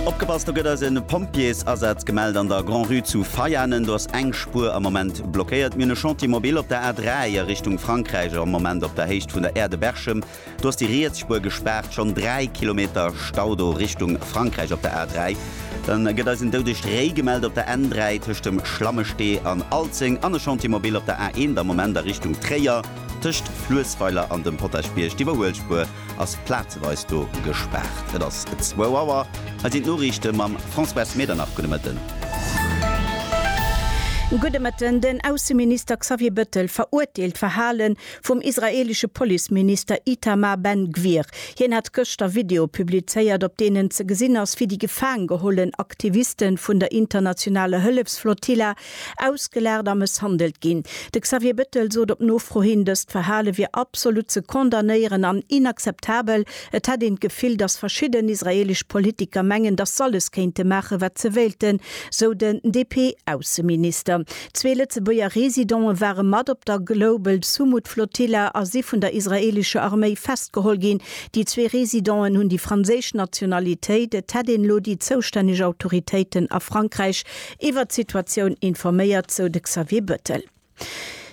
Opgepasst, do gëtt eis e Pompjeesasaz gemellt an der Grand-Rue zu Veianen. Do ass eng Spuer am Moment blockéiert. Mir hunn e Chantier mobil op der A3 a Richtung Frankräich, am Moment op der Héicht vun der Aire de Berchem. Do ass déi riets Spuer gespaart. Schonn 3 Kilometer Stau do Richtung Frankräich op der A3. Dann gëtt eis en doudegt Réi gemellt op der N3 tëscht dem Schlammestee an Alzeng an e Chantier mobil op der A1 am Moment a Richtung Tréier. Tëscht Fluessweiler an dem Potaschbierg, d'Iwwerhuelspuer ass plazeweis do gespaart. Et ass zwou Auer, hei sinn d'Noriichte mam Françoise Medernach. Gudde Mëtten. Gudde Mëtten. Den Ausseminister Xavier Bëttel verurteelt d'Verhale vum israeelesche Policeminister Itamar Ben Gvir. Hien hat gëschter Videoe publizéiert, op deenen ze gesinn ass, wéi déi gefaangehollen Aktiviste vun der internationaler Hëllefsflotilla Ausgelaacht a mësshandelt ginn. De Xavier Bettel sot op Nofro hin, dëst Verhale wier absolut ze condamnéieren an inakzeptabel. Et hätt een d'Gefill, datt verschidden israeelesch Politiker mengen, datt s'alles kéinte maachen, wat se wéilten, sou den DP-Ausseminister. Zwee Lëtzebuerger Residente ware mat op der Global Sumud Flotilla a si vun der israeelescher Arméi festgeholl ginn. Déi zwee Residenten hunn déi franséisch Nationalitéit. Et hätt een elo déi zoustänneg Autoritéiten a Frankräich Iwwert d'Situatioun informéiert, sou de Xavier Bëttel.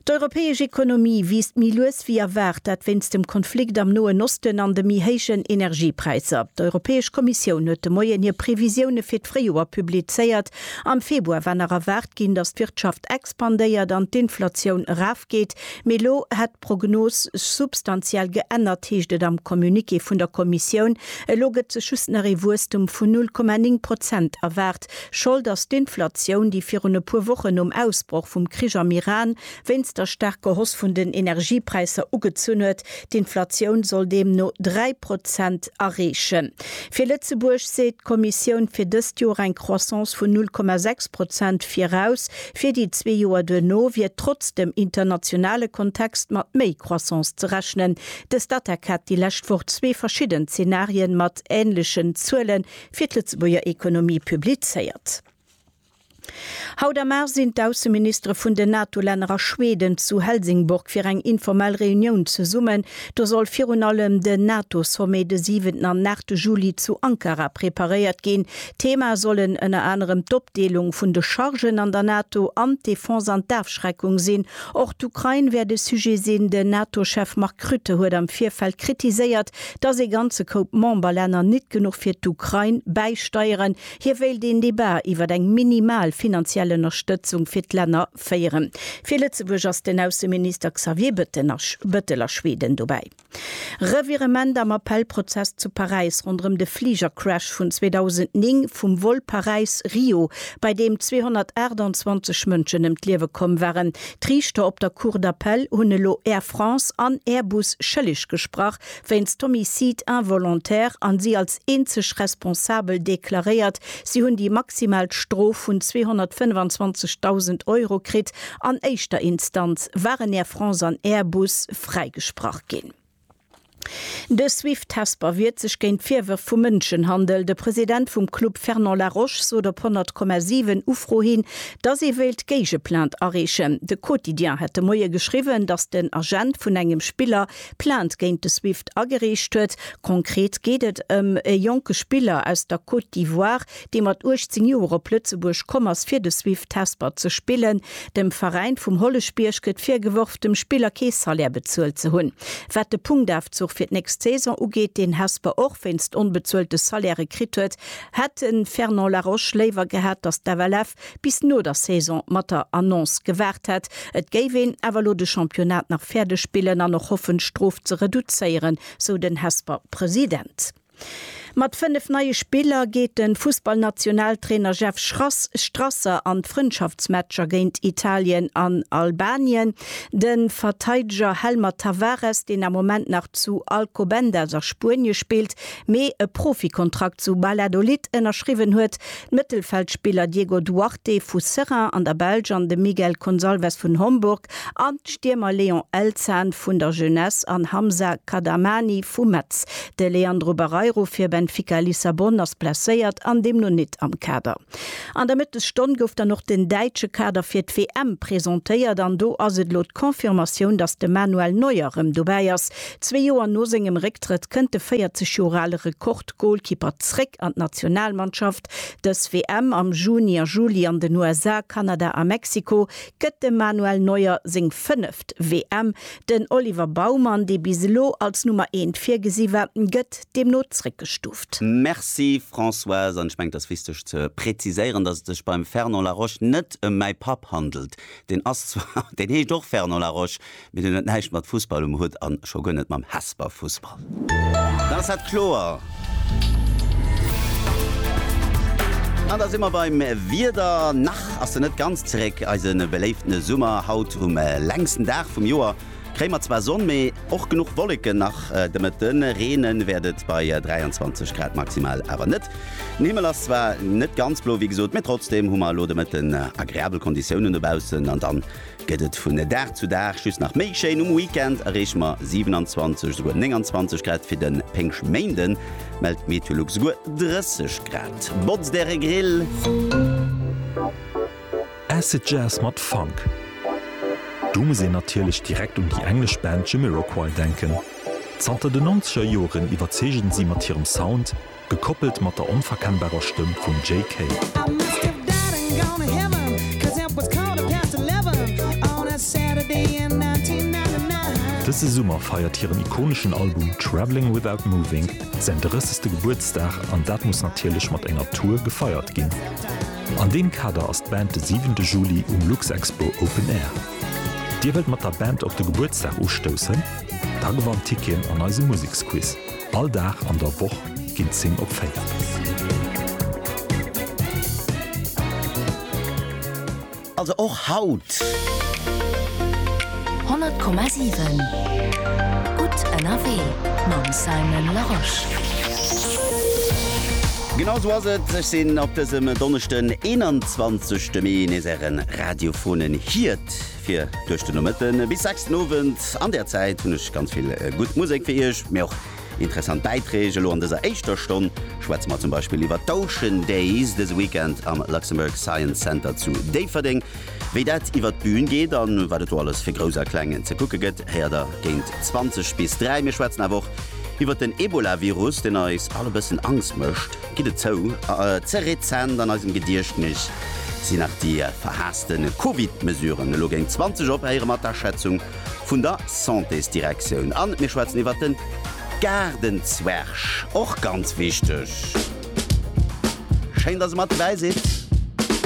D'europäesch Ekonomie wiisst méi lues wéi erwaart, dat wéinst dem Konflikt am Noen Osten an de méi héijen Energiepräisser. D'Europäesch Kommissioun huet de Moien hir Previsioune fir d'Fréijoer publizéiert. Am Februar war nach erwaart ginn, datt d'Wirtschaft expandéiert an d'Inflatioun erafgeet, mee elo hätt d'Prognos sech substantiell geännert, heescht et am Communiqué vun der Kommissioun. Elo gëtt sech just nach ee Wuesstum vun 0,9 Prozent erwaart. Schold ass d'Inflatioun, déi virun e puer Wochen nom Ausbroch vum Krich am Iran wéinst der staarker Hoss vun den Energiepräisser ugezunn huet. D'Inflatioun soll deemno dräi Prozent erreechen. Fir Lëtzebuerg seet d'Kommissioun fir dëst Joer eng Croissance vun null Komma sechs Prozent viraus. Fir déi zwee Joer duerno wier trotz dem internationale Kontext mat méi Croissance ze rechnen. De Statec hat déi lescht Woch zwee verschidden Zenarien mat änlechen Zuelen fir d'Lëtzebuerger Ekonomie publizéiert. Haut am Mar sinn d'Ausseministere vun den NATO-Länner a Schweden zu Helsingborg fir eng informell Reunioun zesummen. Do soll virun allem den NATO-Sommet de siwenten an aachte Juli zu Ankara preparéiert ginn. Thema sollen ënner anerem d'Opdeelung vun de Chargen an der NATO an d'Defense an d'Afschreckung sinn. Och d'Ukrain wäert e Sujet sinn. Den NATO-Chef Mark Rutte huet am Virfeld kritiséiert, Dass ee ganze Koup Memberlänner nit genuch fir d'Ukrain bäisteieren. Hie wéilt een Debat iwwer eng minimal finanziell Ënnerstëtzung fir d'Länner féieren. Fir Lëtzebuerg ass den Ausseminister Xavier Bëttel a Schweden dobäi. Revirement am Appellprozess zu Paräis ronderëm de Fligercrash vun 2009 vum Vol Paräis-Rio, bei deem 228 Mënschen ëm d'Liewe komm waren. D'Riichter op der Cour d'appel hunn elo Air France an Airbus schëlleg gesprach wéinst d'Homicide involontaire an si als eenzeg responsabel deklaréiert. Si hunn déi maximal Strof vun 225.000 Euro kritt. An éischter Instanz waren Air France an Airbus fräigesprach ginn. De Swift Hesper wiert sech géint d'Virwërf vu Mënschenhandel. De President vum Club Fernand Laroche sot op 100,7 Ufro hin, dass ee wéilt Géigeplainte areechen. De Quotidien hätt de Moie geschriwwen, dass den Agent vun engem Spiller Plainte géint de Swift agereecht huet. Konkret geet et ëm e jonke Spiller aus der Côte d'Ivoire, dee mat 18 Joer op Lëtzebuerg komm ass fir de Swift Hesper ze spillen. Dem Veräin vum Holleschbierg gëtt virgeworf, dem Spiller kee Salaire bezuelt ze hunn. Wat de Punktafzuch fir d'nächst Saison ugeet, deen Hesper och wéinst onbezuelte Salairë kritt huet, hätt de Fernand Laroche léiwer gehat, datt d'FLF bis no der Saison mat der Annonce gewaart hätt. Et géif een awer elo de Championnat nach fäerdeg spillen an och hoffen, d'Strof ze reduzéieren, sou den Hesper-President. Mat 5 neie Spiller geet de Fussballnationaltrainer Jeff Strasser an d'Frëndschaftsmatcher géint Italien an Albanien. De Verteideger Helmer Tavares, deen am Moment nach zu Alcobendas a Spuenie spillt, mee e Profikontrakt zu Valladolid ënnerschriwwen huet, D'Mëttelfeldspiller Diego Duarte vu Seraing an der Belsch an de Miguel Consalves vun Homburg an d'Stiermer Leon Elzhan vun der Jeunesse an Hamza Kadamani vu Metz. De Leandro Barreiro fir Benfica Lissabon ass blesséiert an deemno nit am Kader. An der Mëttesstonn gouf dann och den däitsche Kader fir d'WM presentéiert an do ass et elo d'Confirmatioun, dass de Manuel Neuer rëm dobäi ass. Zwee Joer no sengem Récktrëtt kënnt de 40 Joer ale Rekord-Golkipper zréck an d'Nationalmannschaft. Dës WM am Juni a Juli an den USA, Kanada a Mexiko gëtt dem Manuel Neuer seng fënneft WM. Den Oliver Baumann, dee bis elo als Nummer eent virgesi war, gëtt deemno zréckgestuuft. Merci Françoise, an ech mengen et ass wichteg ze präziséieren, dass et sech beim Fernand Laroche net ëm mäi Papp handelt. Deen ass zwar, deen heescht och Fernand Laroche, Mee deen huet näischt mat Fussball um Hutt an scho guer net mam Hesper Fussball. Dann ass dat kloer. An da si mer beim Wieder. Nach ass en net ganz zeréck, eise beléiften Summer. Haut um längsten Dag vum Joer kréie mer zwar Sonn, mee och genuch Wolleken. Nach de Mëtte reene wäert et bei 23 Grad, maximal awer net. Den Himmel ass zwar net ganz blo, wéi gesot, mee trotzdeem hu mer elo de Mëtten agreabel Konditiounen dobaussen. An dann Gëtt et vun Dag zu Dag just nach méi schéin, um Weekend erreeche mer 27, souguer 29 Grad, fir de Péngschtméinde mellt d'Meteolux souguer 30 Grad. Botzt Äre Grill! Acid Jazz mat Funk, do muss een natierlech direkt un déi englesch Band Jamiroquai denken. Zanter de nonzeger Joren iwwerzeegen si mat hirem Sound, Gekoppelt mat der onverkennbarer Stëmm vum Jay Kay. Dëse Summer feiert hiren ikoneschen Album Travelling Without Moving säin 30. Gebuertsdag an dat muss natierlech mat enger Tour gefeiert ginn. An deem Kader ass d'Band de 7 de Juli um Luxexpo Open Air. Dir wëllt mat der Band op de Gebuertsdag ustoussen? Da gewannt Ticketen an eisem Museksquiz. All Dag an der Woch ginn d'Zing op 4. Also och haut! 100,7 Gutt ënnerwee mam Simon Larosche. Genau esou ass et, ech sinn op dësem Donneschden 21 Mee nees ären radiophonen Hiert. Fir duerch den Nomëtten bis 6 den Owend. An där Zäit hunn ech ganz vill gutt Musek fir Iech, mee och interessant Bäiträg. Elo an dëser éischter Stonn schwätze mer zum Beispill iwwer d'Ocean Days dëse Weekend am Luxembourg Science Center zu Déifferdeng. Wéi dat iwwert d'Bühn geet an wat et do alles fir Grouss a Kleng ze kucke gëtt, héiert der géint 20 bis 3. Mir schwätzen awer och iwwert den Ebola-Virus, deen eis all e bëssen Angst mécht. gitt et zou, ze rezent an eisem Gediechtnis sinn nach déi verhaasste Covid-Mesuren. Elo géint 20 op héiere mer d'Aschätzung vun der Santésdirektioun an mir schwätzen iwwert den Gaardenzwerg, och ganz wichteg. Schéin, dass e mat dobäi sidd.